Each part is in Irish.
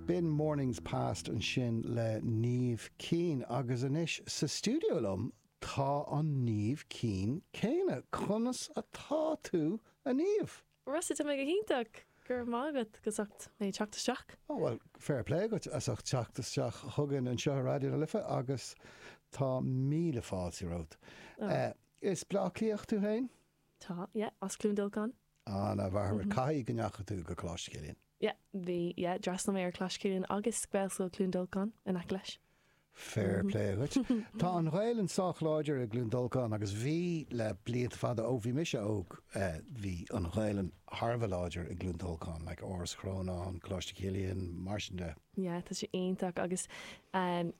B'in Mornings Past ansin le Niamh Keane agus anois sa stiúideo liom tá an Niamh Keane céanna. Conas atá tú, a Niamh? Rossa, tá mé go hiontach! Go raibh maith agat as ucht mé teacht isteach. Ó bhuel, fair plé agat as ucht teacht isteach chugainn anseo ar Raidió na Life agus tá míle fáilte romhat. Ó. As Bleá Cliath tú féin? Tá, yeah, as Cluain Dolcáin. An-mhaith, caithfidh go ndeachaigh tú go Coláiste Chilliain? Yeah, bhí, yeah, d'fhreastal mé ar Choláiste Chilliain agus Gaelscoil Cluain Dolcáin in aice leis. Fair play agat. Tá an Ghaelainn sách láidir i gCluain Dolcáin agus bhí le blianta fada, ó bhí mise óg, eh, bhí an Ghaelainn thar a bheith láidir i gCluain Dolcáin, like Áras Chrónáin, Coláiste Chilliain, mar sin de. Yeah, tá sé iontach agus, em,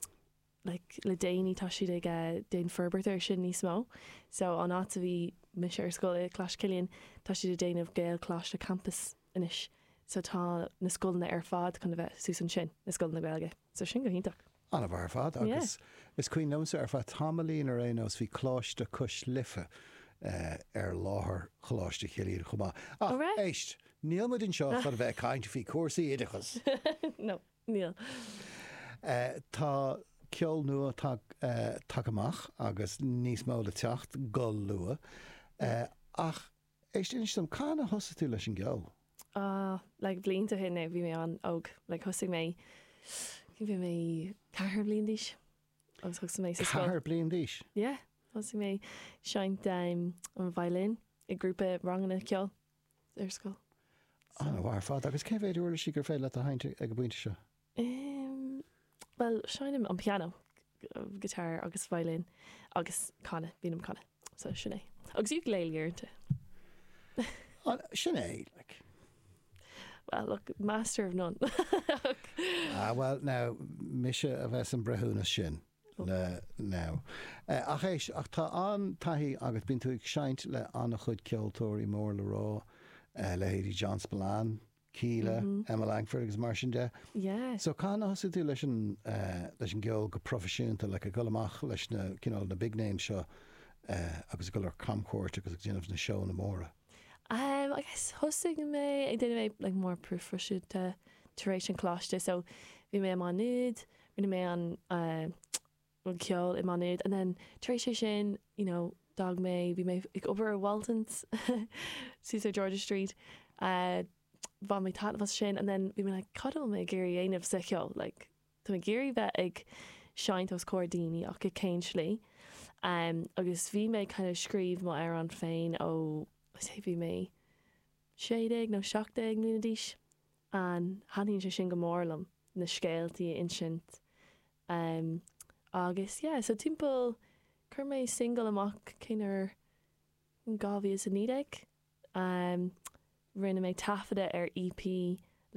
like, le déanaí tá siad ag eh, déan forbairt ar sin níos mó so an áit a bhí mise ar scoil i Coláiste Chilliain tá siad a déanamh Gaelcholáiste campus anois so tá na scoileanna ar fad chun a bheith suas ansin, na scoileanna Gaeilge so sin go hiontach. Ana-mhaith ar fad agus yeah. is cuimhin liomsa ar feadh tamaillín ar aon nós bhí Coláiste Cois Life eh, ar láthair Choláiste Chilliain chomh maith. Ach, oh, right. éist, níl muid anseo chun bheith caint faoi cúrsaí oideachas. no. Níl. Tá ceol nua tagtha amach agus níos mó le teacht go luath. Ach éist, inis dom, cathain a thosaigh tú leis an gceol? Like blianta ó shin, bhí mé an-óg. Like thosaigh mé, bhí mé ceathar bliain d'aois agus thosaigh mé sa scoil. Ceathar bliain d'aois? Yeah. Thosaigh mé ag seinnt an violin i grúpa ranganna ceoil. ar scoil. So. An-mhaith ar fad. Agus cé mhéid uirlis gur féidir leat a sheinnt ag an bpointe seo? Em, bhuel, seinnim an piano, guitar agus violin agus canadh, bím ag canadh. So, sin é. Agus ukulele uaireanta. An, sin é, like. Well, look, master of none. Ah, bhuel, now, mise a bheas an breithiúnas sin. le no. Ach éist, ach tá an-taithí agat, bíonn tú ag seinnt le an-chuid ceoltóirí mór le rá, leithéidí John Spillane, Kíla, Emma Langford agus mar sin de. Yeah. So cathain a thosaigh tú leis an, leis an gceol go proifisiúnta, like ag dul amach leis na, cineál, na big names seo agus ag dul ar camchuairt agus ag déanamh na seóanna móra? I guess thosaigh mé ag déanamh é like more proifisiúnta tar éis an choláiste. So bhí mé i Má Nuad, rinne mé ceol i Má Nuad and then tar éis é sin you know d'fhág mé bhí mé ag obair i Waltons suas ar George's Street bhain mé taitneamh as sin and then bhí mé like cad atá mé ag iarraidh a dhéanamh sa cheol like tá mé ag iarraidh bheith ag seinnt os comhair daoine ach i cén slí um agus bhí mé ag kind of scríobh mo amhrán féin ó I'd say bhí mé sé déag nó seacht déag mbliana d'aois Taitníonn sé sin go mór liom, na scéaltaí a insint em agus yeah so timpeall chuir mé singil amach cén uair, in 2019 em rinne mé taifeadadh ar EP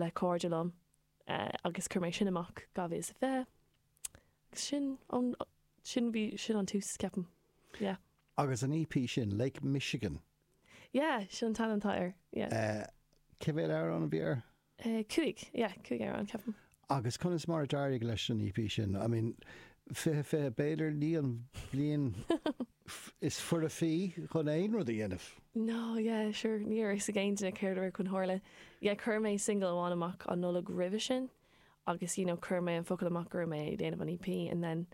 le cairde liom eh agus chuir mé sin amach 2020 agus sin bhí sin an tús ceapaim yeah. Agus an EP sin, Lake Michigan, Yeah, sin an t-ainm air, yeah. Eh, cé mhéad amhrán a bhí air? Eh, cúig, yeah, cúig amhrán, ceapaim. Agus conas mar a d'éirigh leis an EP sin? I mean, fiche, fiche, b'fhéidir ní an bhliain is foirfí chun aon rud a dhéanamh. No, yeah, sure, ní raibh fhios ag aon duine céard a raibh chun tarlú. Yeah, chuir mé singil amháin amach an Nollaig roimhe sin agus, you know, chuir mé an focal amach go raibh mé ag déanamh an EP and then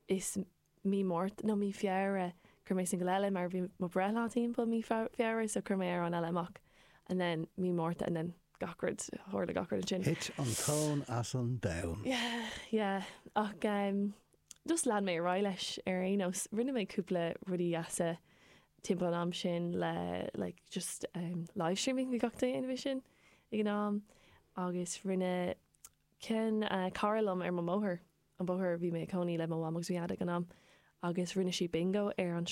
is, mí Márta nó mí Feabhra chuir mé singil eile mar bhí mo breithlá timpeall mí Feabhra so chuir mé amhrán eile amach and then mí Márta and then gach rud tharla gach rud ansin. Thit an tóin as an domhan. Yeah yeah ach em just lean mé ar aghaidh leis ar aon nós rinne mé cúpla rudaí deasa timpeall an am sin le like just em live streaming bhí gach duine déanamh sin ag an am agus rinne cionn eh cara liom ar mo bhóthar eh an bóthar bhí mé i cónaí le mo mham agus mo dhaid ag an am agus rinne siad bingo ar an.